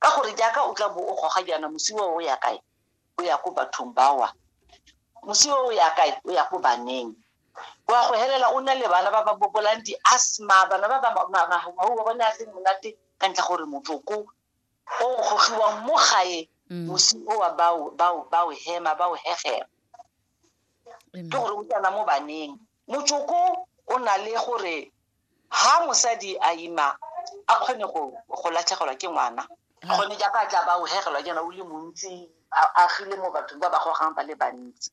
ka gore jaaka o tla bo o goga jaana mosiwa o ya kae o ya ko bathong bawa mosiwa o ya kae o ya ko baneng wa go helela o na le bana ba ba bobolang di-asthma bana ba ba mahuwa bone a se monate ka ntlha gore motsoko o gogiwang mo gae mm. mosi o wa bao hema bao hegema ke gore o tsena mo baneng Motsoko o na le gore ha mosadi a ima a kgone go go latlhegelwa ke ngwana gone jaaka tla ba o hegelwa jaana o le montsi a agile mo bathong ba ba gogang ba le bantsi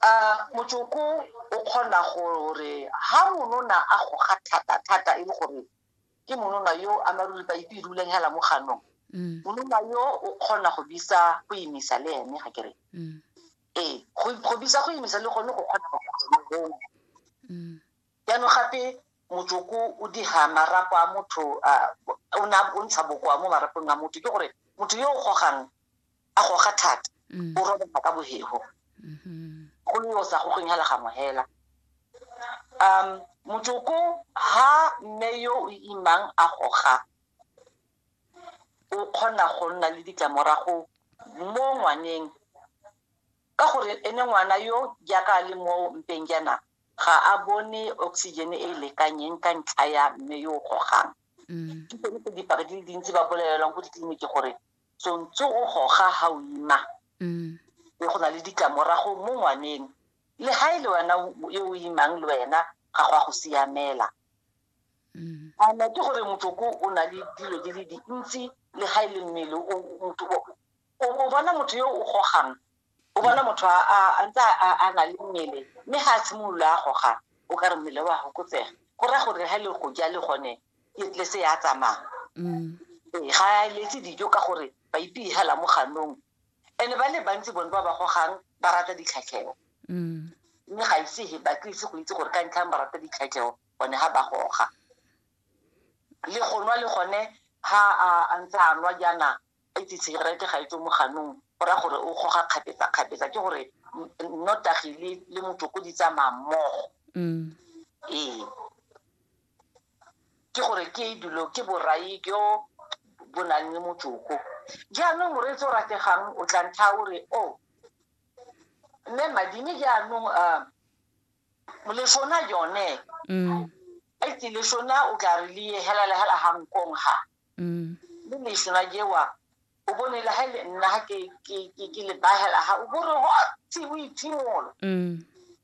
a motsoko o kgona gore ha monona a goga thata thata e le gore ke monona yo a maruri ba ipe rulang hela mo ganong monona yo o kgona go bisa go imisa le ene ga kere ee go bisa go imisa le gone go kgona go kgona mm. jaanong gape motsoko o diga marapo a motho o ne o ntsha bokoa mo marapong a motho ke gore motho yo o gogang a goga thata mm. o robega ka bogego mm-hmm. go le yo sa gogeng hela ga mohela um motsoko ha mme yo o imang a goga o kgona go nna le ditlamorago mo ngwaneng ka gore ene ngwana yo jaaka a le mo mpeng jaana ga a bone oxygen e e lekanyeng ka ntlha ya mme yo o gogang mm. ke tsone tse dipaki di le dintsi ba bolelelwang ko ditleliniki gore tsontse o goga ga o ima mm. e go na le ditlamorago mo ngwaneng le ga e le wena yo o imang le wena ga go a go siamela Mm. a na ke gore motsoko o na le dilo di le dintsi le ga e le mmele o bona motho yo o gogang o bona motho a ntse a na le mmele mme ga a tshimolola a goga o ka re mmele wa gokotsega go raya gore ga e le go ja le gone le se ya tsamaya mm. ee, ga a letse dijo ka gore ba ipegela mo ganong and-e ba le bantsi bone ba ba gogang ba rata ditlhatlheo mm. mme ga ise ba tlise go itse gore ka ntlhang ba rata ditlhatlheo gone ga ba goga le go nwa le gone ha a ntse a nwa jaana a itse tshegerete ga e tswe mo ganong go raya gore o goga kgapetsa-kgapetsa ke gore nnotagi le le motoko di tsamaya mmogo mm. ee ke gore ke dilo ke borai jo bo nang le motoko jaanong moreetsi o rategang o tla ntlha o re o oh, mme madime jaanong um moleshona yone mm. a itse leshona o tla re le helela hela hankong ha mm. le leshona jewa o bone le ha le nna ha ke ke ke le bahela ha o bore ho tsi o itimolo mm.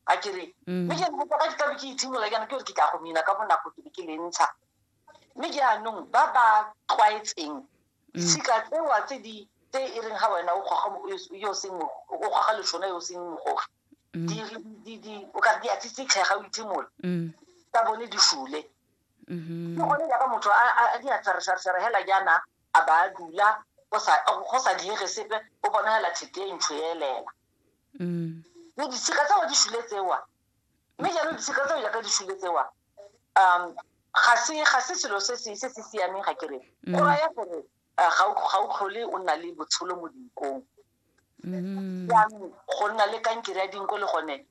a ke re mm. me ke go ka ka ke itimola kana ke re ke tla go mina ka bonako ke ke le ntsha me ke anong ba ba tlwaetseng mm. ditshika tsewa tse di tse e reng ga wena o goga yo seng o goga leshona yo seng mogogi mm. di di di o ka di a tsitsitlhe ga o itshimola mm. ka bone di shule mm-hmm. ke gone jaaka motho a di a tsaresaresere hela jaana a ba a dula go sa diege sepe o bona hela thete e ntsho elela mme ditshika tsewa di shule tsewa mme jaanong ditshika tseo jaaka di shule tsewa um ga se ga se selo se se se se siameng ga kere mm. go raya gore uh, ga o tlhole o nna le botsholo mo dinkong mm. jaanong go nna le kankere ya dinko le gone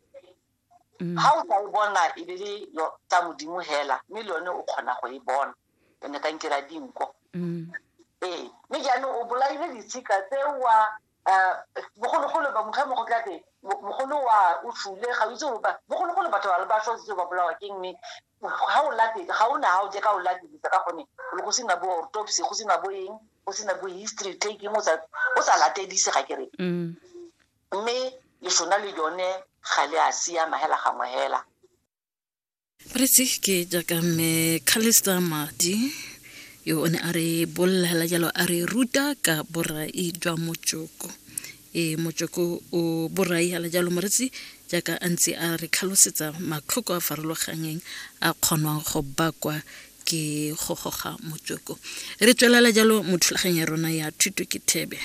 ga mm. o tla e bona e be le tsa modimo hela mme le yone o kgona go e bona yone kankere ya dinko ee mme jaanong o bolaile ditshika tsewa um bogologolo ba motlha mo go tla teng mogolo wa o fule ga o itse gore ba bogologolo batho ba ba tlhositse ba bolawa ke mme ga o late ga o na ga o je ka o latelisa ka gone le go sena bo autopsy go sena bo eng go sena bo history taking o sa o sa latelise ga ke re mm. mme lesona le yone ga le a siama hela gangwe hela Presi ke jaaka mme Callister Madi yo o ne a re bolela jalo a re ruta ka borai jwa motsoko e motsoko o borai ala jalo moretsi jaaka a ntse a re tlhalosetsa matlhoko a farologanyeng a kgonwang go bakwa ke go goga motsoko re tswelela jalo mo thulaganyong ya rona ya thuto ke thebe